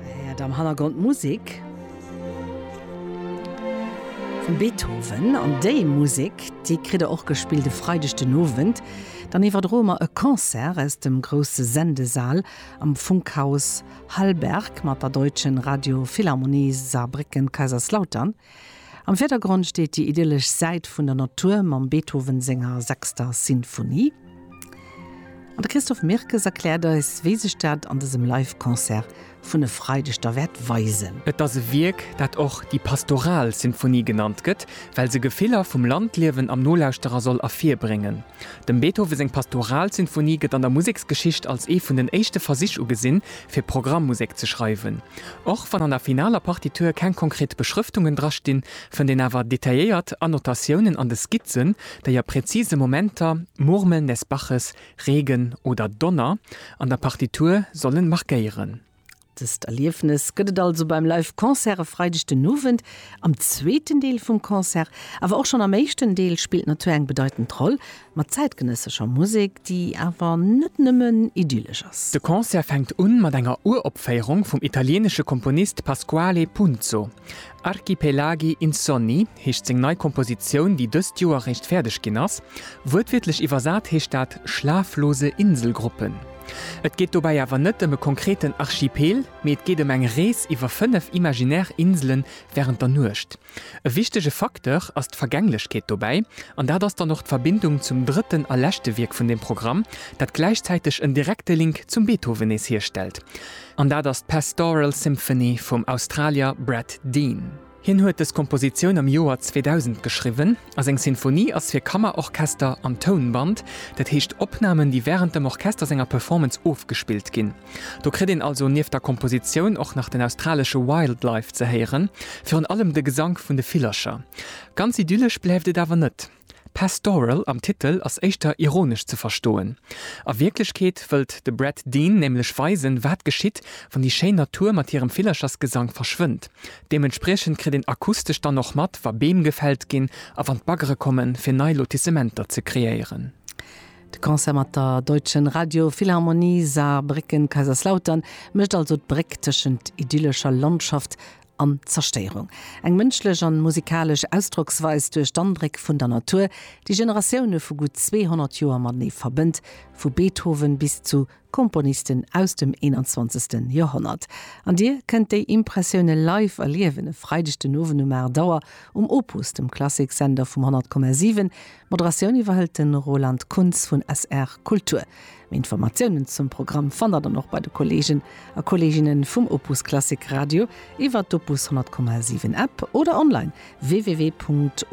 He'ert am Hannergrond d'Musik vum Beethoven. An déi Musik, déi kritt der och gespillt e Freideg den Owend. Dann iwwerdroe mer e Concert aus dem grousse Sendesal am Funkhaus Hallberg mat der Deutschen Radio Philharmonie Saarbrécken-Kaiserslautern. Am Virdergrond steet déi idyllesch Säit vun der Natur mam Beethoven senger sechster Sinfonie. An de Christophe Mirkes erkläert eis, wéi sech dat an dësem Live-Concert vun e Freideg da wäert weisen. Et ass e Wierk, dat och déi pastoral Sinfonie genannt gëtt, well se Gefiller vum Landliewen am Nolauschterer soll ervirbréngen. Dem Beethoven seng pastoral Sinfonie gëtt an der Museksgeschicht als ee vun den éischte Versich ugesinn, fir Programmmusek ze schreiwen. Och wann an der finaler Partitur keng konkret Beschrëftungen dra stinn, fënnt een awer detailléiert Annotatiounen an de Skizzen, déi a präzise Momenter, Murmeln des Baches, Regen oder Donner, an der Partitur sollen markéieren. Dëst Erliefnes gëtt et also beim Live Concert e Freideg den Owend. Am zweeten Deel vum Concert, awer och schonn am éischten Deel, spillt d'Natur eng bedeitend Roll. Mat zäitgenëssescher Musek, déi awer net nëmmen idyllesch ass. De Concert fänkt un mat enger Uropféierung vum italieenesche Komponist Pasquale Punzo. Archipelagi insonni heescht seng nei Kompositioun, déi dëst Joer réischt fäerdeg ginn ass. Wuertwiertlech iwwersat heescht dat schlaflose Inselgruppen. Et geet dobäi awer net ëm e konkreten Archipel, mee et geet ëm eng Rees iwwer fënnef imaginär Insele wärend der Nuecht. E wichtege Facteur ass d'Vergänglechkeet dobäi, an dat ass dann och d'Verbindung zum drëtten a leschte Wierk vun dem Programm, dat gläichzäiteg en direkte Link zum Beethoven nees hierstellt, an dat ass d'Pastoral Symphony vum Australier Brad Dean. Hien huet dës Kompositioun am Joer 2000 geschriwwen a seng Sinfonie ass fir Kammerorchester an Tounband, dat heescht Opnamen, déi wärend dem Orchester senger Performance ofgespillt ginn. Do kritt een also nieft der Kompositioun och nach den australesche Wildlife ze héieren, virun allem de Gesank vun de Villercher. Ganz idyllesch bleift et awer net. Pastoral am Titel ass éischter ironesch ze verstoen. A Wierklechkeet wëllt de Brad Dean nämlech weisen, wat geschitt, wann déi schéin Natur mat hirem Villerchersgesank verschwënnt. Deementspriechend kritt een akustesch dann och mat, wa Beem gefällt ginn a wann d'Baggere kommen, fir nei Lotissementer ze kreéieren. De Concert mat der Deutschen Radio Philharmonie Saarbrécken Kaiserslautern mécht also d'Bréck tëschent idyllescher Landschaft an Zerstéierung. Eng mënschlech an musikalesch Ausdrocksweis duerch d'Andréck vun der Natur, déi Generatioune vu gutt 200 Joer matenee verbënnt, vu Beethoven bis zu Komponisten aus dem 21. Joerhonnert. An dir kënnt déi Impressioune live erliewen e Freideg den Owend um 8 Auer um Opus, dem Klassiksender vum 100,7. D'Moderatioun iwwerhëlt de Roland Kunz vun SR Kultur. Méi Informatiounen zum Programm fannt der dann och bei de Kolleegen a Kolleeginne vum Opus Klassik Radio iwwer d'Opus 100,7 App oder online www.opus.radio.